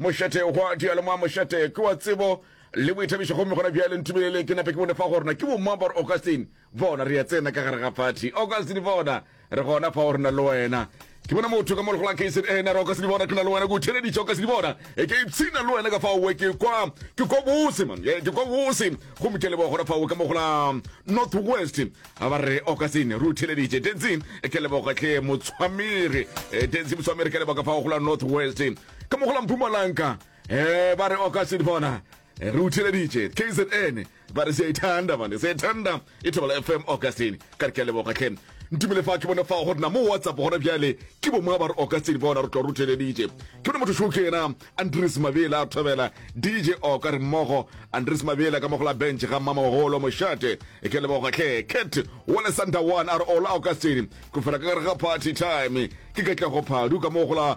Mošate hwa dialomwa Mošate ke wa tsebo le boithabišo gomme gona bjale ntumeleleng ke nape ke bone fa gore na ke bomang ba re Augustine bona re ya tsena ka gare ga phathi Augustine bona re gona fa gore na le wena ke bona motho ka mo legola kzn eh, re Augustine bona ke na le wena ke o theleditše Augustine bona e ke ipshina le wena ka fa owe ke kwa ke kwa bose man eh, ke kwa bose gomme ke leboga gona fa owe ka mo gola north west ga ba re Augustine re o theleditše densi ke leboga tle motshwamere eh, densi motshwamere ke leboga fa o gola north west ka mo go la mpumalanka um ba re oka se bona eh, re utheleditše kzn ba re seithanda bane seithanda e thobela fm augustine ka re ke a leboga tlhe ntumele fa ke bone fa gore na mo whatsapp gona bjale ke bo mongwe ba re augustine bona re tlo re utheleditše ke bone motho šo ke ena andres mabela a thobela dj oka re mmogo andres mabela ka mogola bench ga mmamagolo mošate e ke leboga tlhe cat wale santa one a re ola augustine go fela ka gare ga party time ke katlego phadu ka mogola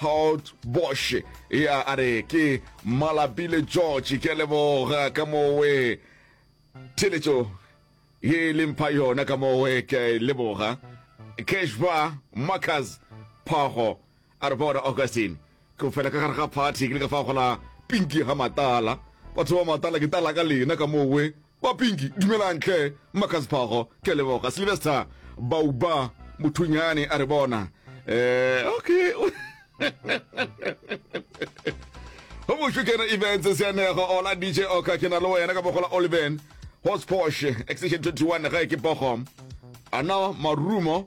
Haut Bosch ya a re ke Malapile George ke a leboga ka mowe theletšo ye e leng pha yona ka mowe ke a e leboga Keshba Marcus Phago a re bona Augustine ke o fela ka gare ga party ke le ka fa gola pinki ga matala batho ba matala ke tala ka lena ka mowe Ba Pinki, Dumelang, tlhe, Mmakaziphogo, ke a leboga. Sylvester, Bauba, mothunyane a re bona. Eh, okay. go mošo kena events seanego ola dj oka ke na le wena ka bogola oliven hospos extension 21 ga e ke pogo ana marumo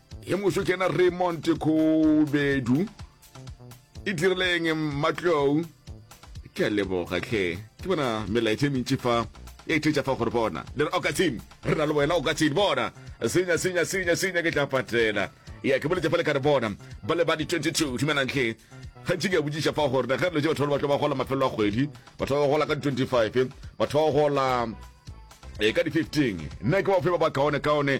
ye moso ke ena raymond kgobedu e dirileng mmatlou ke a leboga tlhe ke bona melaetša e mentši fa e thetša fa gore bona le re okatsin re na le wena okatsin bona senya senya senya senya ke tla patela ya ke boletse fa le ka re bona ba le ba di-22 dumelang tlhe gantši ke a botsiša fa gore ge re letse batho ba le batlo ba gola mafelo a kgwedi batho ba ba gola ka di-25 batho ba ba gola e ka di-15 nna ke bafe ba ba kaone kaone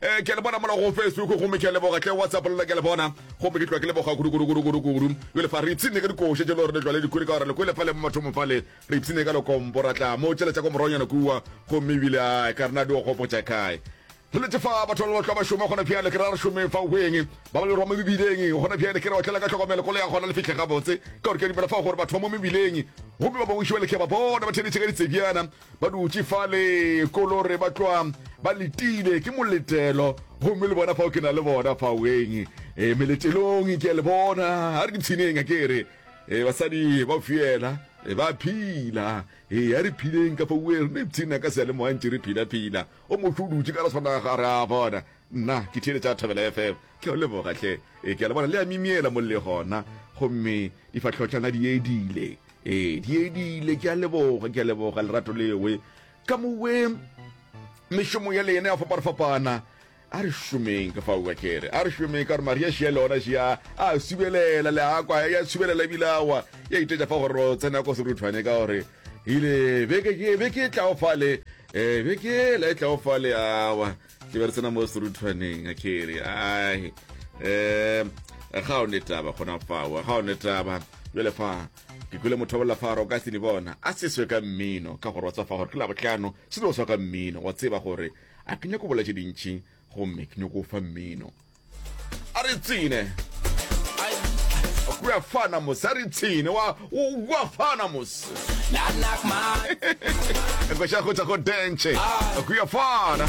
Eh, ke le bona mola go Facebook gomme ke leboga tle WhatsApp lona ke le bona gomme ke tlwa ke leboga kudu kudu kudu kudu kudu jole fa re ipsine ka dikoše tše le gore le tlwa le dikuri ka gore le kwele fale mo mathomo fale re ipsine ka lekompo ra tla mo tšela tša ko moronyana kua gomme ebile a ka rena di o gopotša kae re letse fa batho ba tlwa ba šoma gona pjale ke ra re šomeng fa weng ba ba le rwa mo mebileng gona pjale ke re otlela ka tlhokomelo kolo ya gona le fitlhe gabotse ka gore ke dumela fa gore batho ba mo mebileng gomme ba bangwe šibale ke ba bona ba theletše ka ditsebjana Ba dutše fale ko lo re ba tloa ba letile ke moletelo gomme le bona fao ke na le bona faoeng e eh, meletelong ke a le bona a re dipshineng a ke re e basadi ba fiela e ba phila e ya re phileng ka fauwe re ne pshina ka seale moa ntše re phila phila o motho o dutše ka re tshwana ga re a bona nna ke thiele tša thabela fm ke a lebogatlhe e ke a le bona le a mimiela mo le gona gomme difatlhotlhana di edile ee diedile ke a leboga ke a leboga lerato lewe ka mowe mešomo ya lena ya fapanafapana a re šomeng ka faoa kere a re šomeng ka gore maria šia le ona šia a subelela le akwa ya subelela ebile awa ya itetša fa gore tsena ko seruthwane ka gore ile beke e tlago fale um beke ela e tlago fale awa ke be re tsena mo seruthwaneng a kere ai um ga o ne taba gona fao ga o ne taba bjale fa ke kwele motho wa bolafaro ka sene bona a seswe ka mmino ka gore wa tswafa gore ke la botlhano se no swa ka mmino wa tseba gore a ke nyako bola tše dintšhi gomme ke nyako fa mmino a re tsene kua fana mose a re tsene wa kua fana mose koša go tsa go dentšhe kua fana